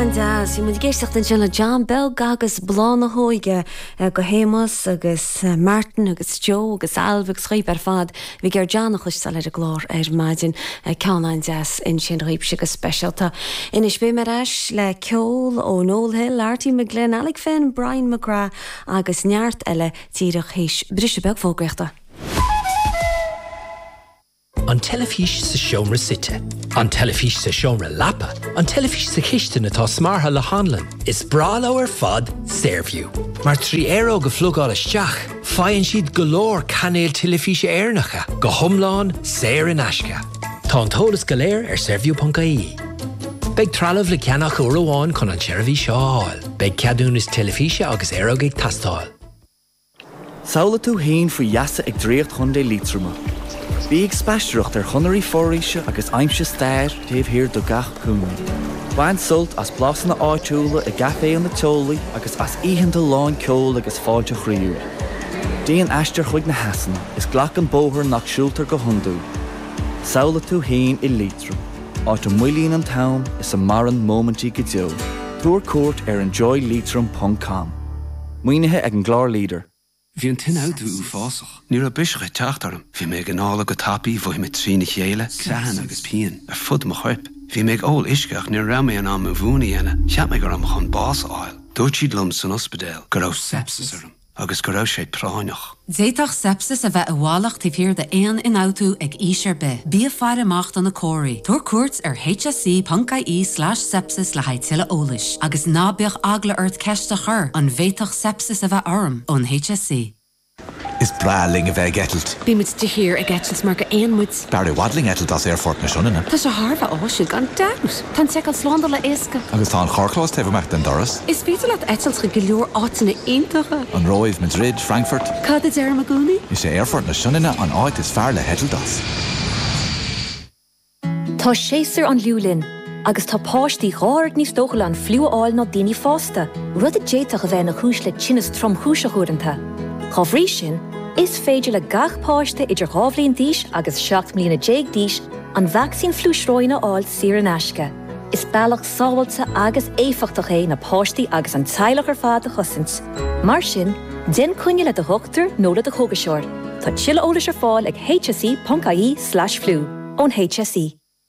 An-deas! Bhí muid ag éisteacht ansin le John Beag agus Bláth na hÓige, do Shéamus agus Martin agus Joe agus Ailbhe agus Chaoimhe ar fad. Bhí siad ag iarraidh John a chloisteáil ar an gclár ar maidin. Ceann an-deas ansin dhaoibhse go speisialta. Anois beidh mé ar ais le ceol ó Noel Hill, Artie McGlynn, Alec Finn, Brian McGrath agus neart eile díreach théis briseadh beag fógraíochta. An teilifís sa seomra suite. An teilifís sa seomra leapa. An teilifís sa chistin atá smeartha le hanlann. Is breá leo ar fad Saorview. Mar trí aeróg a phlugáil isteach, faigheann siad go leor cainéil teilifíse Éireannacha, go hiomlán saor in aisce. Tá an t-eolas go léir ar Saorview.ie. Beidh trealamh le ceannach uair amháin chun an tseirbhís seo a fháil. Beidh ceadúnas teilifíse agus aeróg ag teastáil. Samhlaigh tú fhéin faoi gheasa ag draíocht Chontae Liatroma. Bí ag spaistearacht ar chonairí foraoise agus aimsigh stair taobh thiar de gach cúinne. Bain sult as blasanna áitiúla i gcaiféanna teolaí agus as oícheanta lán ceoil agus fáilte chroíúil. Déan aistear chuig na heasanna agus glac an bóthar nach siúltar go hiondúil. Samhlaigh tú fhéin i Liatroim, áit a moillíonn an t-am is a maireann móimintí go deo. Tabhair cuairt ar enjoyleitrim.com. Maoinithe ag an gclár Leader. Bhí an t-ionfhabhtú uafásach. Ní raibh biseach ag teacht orm. Bhí mé ag anála go tapaidh, bhraith mé trína chéile, creathanna agus pian, ar fud mo choirp. Bhí mé ag ól uisce ach ní raibh mé in ann mo mhún a dhéanamh. Cheap mé go raibh mé chun bás a fháil. Dúirt siad liom san ospidéal go raibh sepsis orm agus go raibh sé práinneach. D'fhéadfadh sepsis a bheith i bhfalach taobh thiar d'aon ionfhabhtú ag aois ar bith. Bí ag faire amach do na comharthaí. Tabhair cuairt ar hse.ie slash sepsis le haghaidh tuilleadh eolais. Agus ná bíodh eagla ort ceist a chur, An bhféadfadh sepsis a bheith orm? ón hse. Is breá linn a bheith ag eitilt. Bímid de shíor ag eitilt mar gur éin muid. B'fhearr i bhfad linn eitilt as Aerfort na Sionainne. Tá sé thar a bheith áisiúil gan dabht! Tá an tseiceáil slándála éasca. Agus tá an carrchlós taobh amach den doras. Is féidir leat eitilt chuig go leor áiteanna iontacha. An Róimh, Madrid, Frankfurt. Cad a deirim i gcónaí? Is é Aerfort na Sionainne an áit is fearr le heitilt as. Tá séasúr an fhliú linn. Agus tá páistí dhá oiread níos dóchúla an fliú a fháil ná daoine fásta, rud a d'fhéadfadh a bheith ina chúis le tinneas tromchúiseach uaireanta. Dá bhrí sin, is féidir le gach páiste idir dhá bhliain d'aois agus seacht mbliana déag d'aois an vacsaín fliú sróine a fháil saor in aisce. Is bealach sábháilte agus éifeachtach é na páistí agus an teaghlach ar fad a chosaint. Mar sin, déan coinne le do dhochtúir nó le do chógaiseoir. Tá tuilleadh eolais ar fáil ag hse.ie/fliú ón HSE.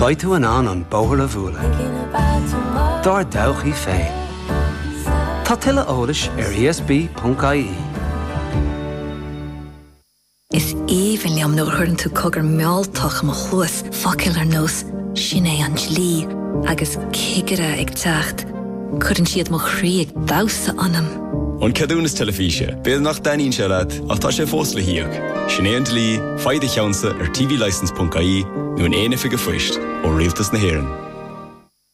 Beidh tú in ann an bóthar a bhualadh dár dtodhchaí féin. Tá tuilleadh eolais ar ESB.ie. Is aoibhinn liom nuair a chuireann tú cogair mhealltacha i mo chluas, focail ar nós 'Sin é an dlí' agus 'Cigire ag teacht', cuireann siad mo chroí ag damhsa ionam! An ceadúnas teilifíse, b'fhéidir nach dtaitníonn sé leat ach tá sé fós le híoc. Sin é an dlí, faigh do cheannsa ar tvlicense.ie nó in aon oifig an phoist ó Rialtas na hÉireann.